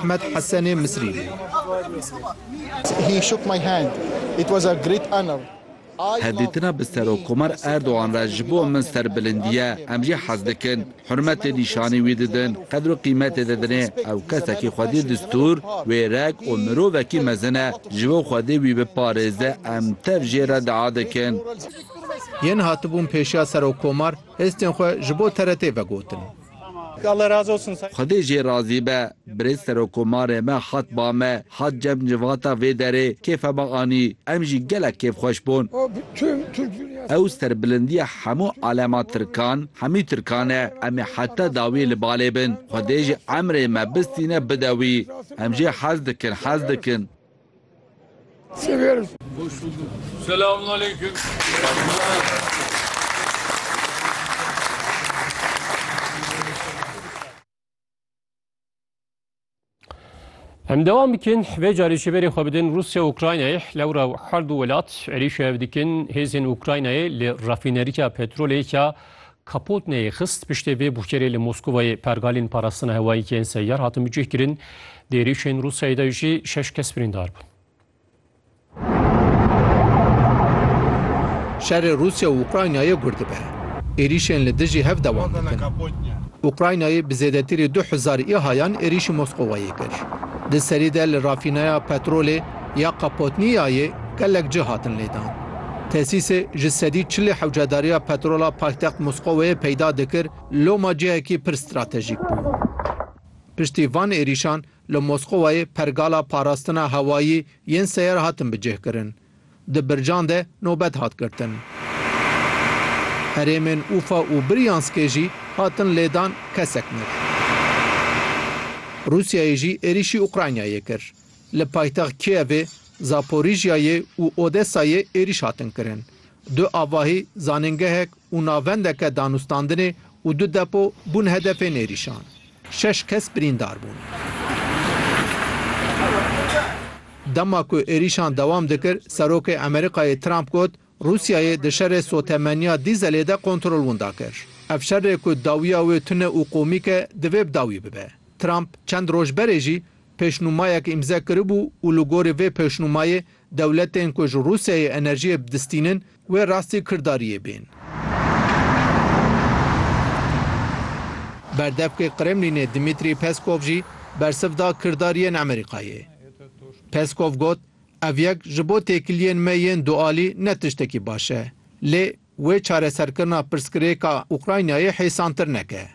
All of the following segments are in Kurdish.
Ahmed Hesenê Misrî bû. Hevdîtina bi Serokkomar Erdogan re ji bo min serbilindî ye. Em jî hez dikin hurmetê nîşanî wî didin, qedr û qîmetê didinê. Ew kesekî xwedî distûr, wêrek û mirovekî mezin e. Ji bo xwedî wî biparêze em tev jê re dua dikin. Yên hatibûn pêşiya Serokkomar hêstên xwe ji bo TRT'ê vegotin. Xwedê jê razî be. Birêz Serokomarê me hat ba me, hat cem civata vê derê, kêfe me anî. Em jî gelek kêfxweş bûn. Ew serbilindiya hemû alema Tirkan, hemî Tirkan e. Em ê heta dawiyê li balê bin. Xwedê ji emrê me bistîne bide wî. Em jê hez dikin, hez dikin. Seviyoruz. Hoş bulduk. Selamun aleyküm. Em devam bikin vê carê ji berê xwe bidin Rusya û Ukraynayê lewra her du welat êrîş ev dikin hêzên Ukraynayê li refîneriya petrolê ya Kapotneyê xist piştê vê bûkerê li Moskovayê pergalên parastina hewayî ke yên seyyar hatin bicihkirin di êrîşên Rûsyayê de jî şeş kes birîndar bûn. Şerê Rûsya û Ukraynayê gur dibe. Êrîşên li dijî hev dewam dikin. Ukraynayê bi zêdetirî du hezar îhayan êrîşî Moskovayê kir. Di serî de li rafîneya petrolê, ya Kapotniyayê gelek cih hatin lêdan. Tesîsê ji sedî çilê hewcedariya petrola paytext Moscoweyê peyda dikir, loma cihekî pir stratejîk bû. Piştî van êrîşan li Moscoweyê pergala parastina hewayî yên seyer hatin bicihkirin. Di bircan de nobet hat girtin. Herêmên Ufa û Biryanskê jî hatin lêdan kesek mir. Rûsyayê jî êrîşî Ukraynayê kir. Li paytext Kievê, Zaporijyayê û Odesayê êrîş hatin kirin. Du avahî, zanîngehek û navendeke danûstandinê û du depo bûn hedefên êrîşan. Şeş kes birîndar bûn. Dema ku êrîşan dewam dikir, Serokê Amerîkayê Trump got, Rûsyayê di şerê sotemeniya dîzelê de kontrol winda kir. Ev şerê ku dawiya wê tune û komîk e, divê bi dawî bibe. Trump çend roj berê jî pêşnûmayek îmze kiribû û li gorî vê pêşnûmayê dewletên ku ji Rûsyayê enerjiyê bidistînin wê rastî kirdariyê bên. Berdevkê Kremlînê Dmîtrî Peskov jî bersiv da kirdariyên Amerîkayê. Peskov got, Ev yek ji bo têkiliyên me yên dualî ne tiştekî baş e. Lê wê çareserkirina pirsgirêka Ukraynayê hêsantir neke.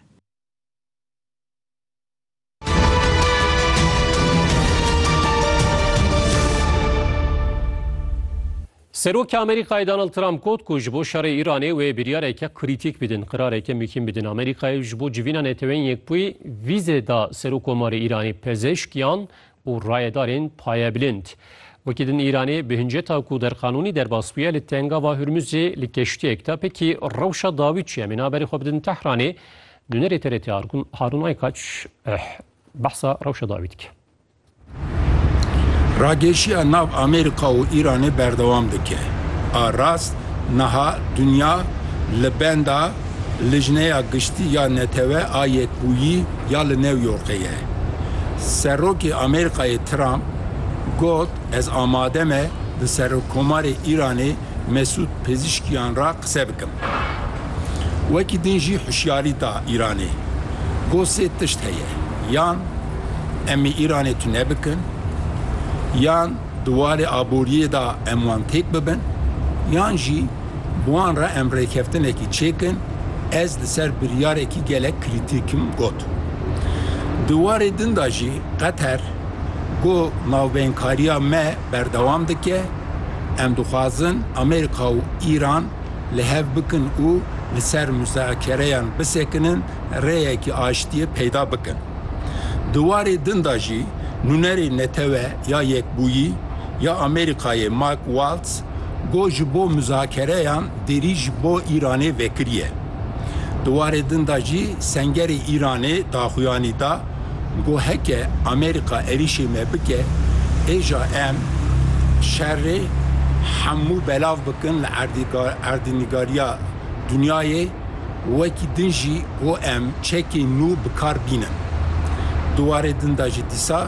Serokê Amerîkayê Donald Trump got ku ji bo şerê Îranê wê biryareke krîtîk bidin, qirareke mihîm bidin. Amerîkayê ji bo civîna Neteweyên Yekbûyî vîze da Serokomarê Îranê, pezêşkiyan û rayedarên payebilind. Wekî din Îranê bi hinceta ku derqanûnî derbas bûye li Tengava Hurmuzê li keştiyek de pekî rewşa dawî çi em ê naberê xwe bidin Tehranê, Nûnerê TRT Harûn Aykaç behsa rewşa dawî dike. Ragêşiya nav Amerîka û Îranê berdewam dike. A rast niha dinya li benda Lijneya Giştî ya Netewe a Yekbûyî ya li New Yorkê ye. Serokê Amerîkayê Trump got, Ez amade me bi Serokkomarê Îranê Mesûd Pezîşkiyan re qise bikim. Wekî din jî hişyarî da Îranê. Got sê tişt heye, yan em ê Îranê tune bikin, yan di warê aboriyê de em wan têk bibin, yan jî bi wan re em rêkeftinekî çêkin, ez li ser biryarekî gelek krîtîk im got. Di warê din de jî Qeter got navbeynkariya me, Berdewam dike, Em dixwazin Amerîka û Îran li hev bikin û li ser muzakereyan bisekinin, rêyekî aştiyê peyda bikin. Di warê din de jî nûnerê Netewe ya Yekbûyî ya Amerîkayê Mike Waltz got ji bo muzakereyan derî ji bo Îranê vekiriye. Di warê din de jî sengerê Îranê daxuyanî da, Got heke Amerîka êrîşê me bike êja em şerê hemû belav bikin li erdnîgariya dinyayê wekî din jî got em çekên nû bikar bînin. Di warê din de jî dîsa